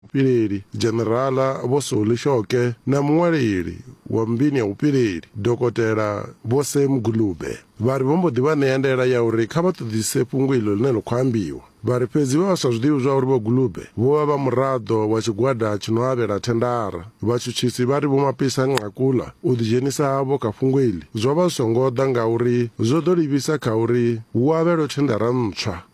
Vhupileli, Dzhenerala Vho Solly Shoke na muṅwaleli wa mmbiini ya vhupileli, Dokotela Vho Sam Gulube, vha ri vho mbo ḓi vha ṋea ndaela ya uri kha vha ṱoḓisise fhungo iḽo ḽine ḽa khou ambiwa. Vha ri fhedzi vha vha sa zwi ḓivhi zwa uri Vho Gulube vho vha vha muraḓo wa tshigwada tshi no avhela thendara. Vhatshutshisi vha ri Vho Mapisa-Nqakula u ḓidzhenisa havho kha fhungo iḽi zwo vha zwi songo ḓa ngauri zwo ḓo livhisa kha uri hu avhelwe thendara ntswa.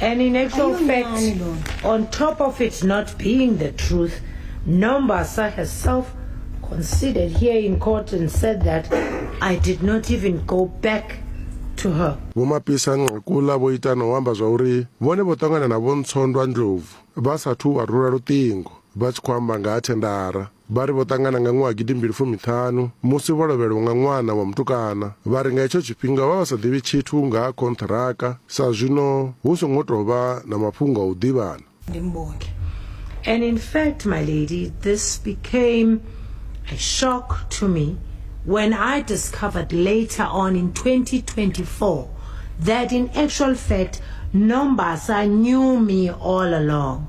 And in actual fact, on top of it not being the truth, Nombasa herself conceded here in court and said that I did not even go back to her. Vho Mapisa Nqakula vho ita na u amba zwa uri vhone vho ṱangana na Vho Ntsondwa Ndlovu vha sathu vha rula luṱingo vha tshi khou amba nga ha thendara. Vha ri vho ṱangana nga ṅwaha gidi mbili fumi ṱhanu musi vho lovhelwa nga ṅwana wa mutukana. Vha ri nga hetsho tshifhinga vha vha sa ḓivhi tshithu nga ha khonṱhiraka sa zwino hu songo tou vha na mafhungo a u ḓivhana. Ndi mbongi. And in fact, my lady, this became a shock to me when I discovered later on in 2024 that in actual fact, Nombasa knew me all along.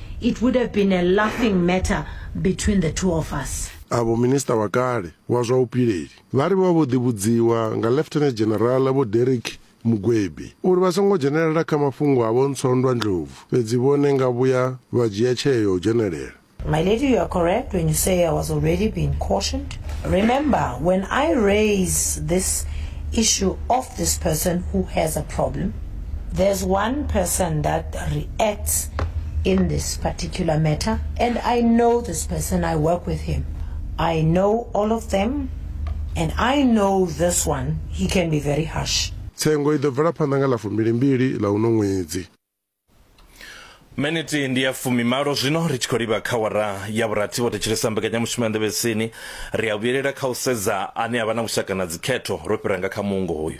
It would have been a laughing matter between the two of us. Avho Minista wa kale wa zwa Vhupileli vha ri vha vho ḓivhudziwa nga Lieutenant General Vho Derrick Mugwebi uri vha songo dzhenelela kha mafhungo a vhontswondwa ndlovu fhedzi vhone nga vhuya vha dzhia tsheo ya u dzhenelela. My lady you are correct when you say I was already being cautioned. Remember when I raise this issue of this person who has a problem, there's one person that reacts in this particular matter, and I know this person, I work with him. I know all of them, and I know this one, he can be very harsh. tsengo i ḓo bvela phanḓa nga ḽa fumbilimbili ḽa uno ṅwedzi miniti ndi ya fumimalo zwino ri tshi khou livha kha wara ya vhurathi vho thetshelesa mbekanyamushumo ya nḓevhesini ri a vhuyelela kha u sedza ane a vha na vhushaka na dzikhetho ro fhira nga kha muungo hoyu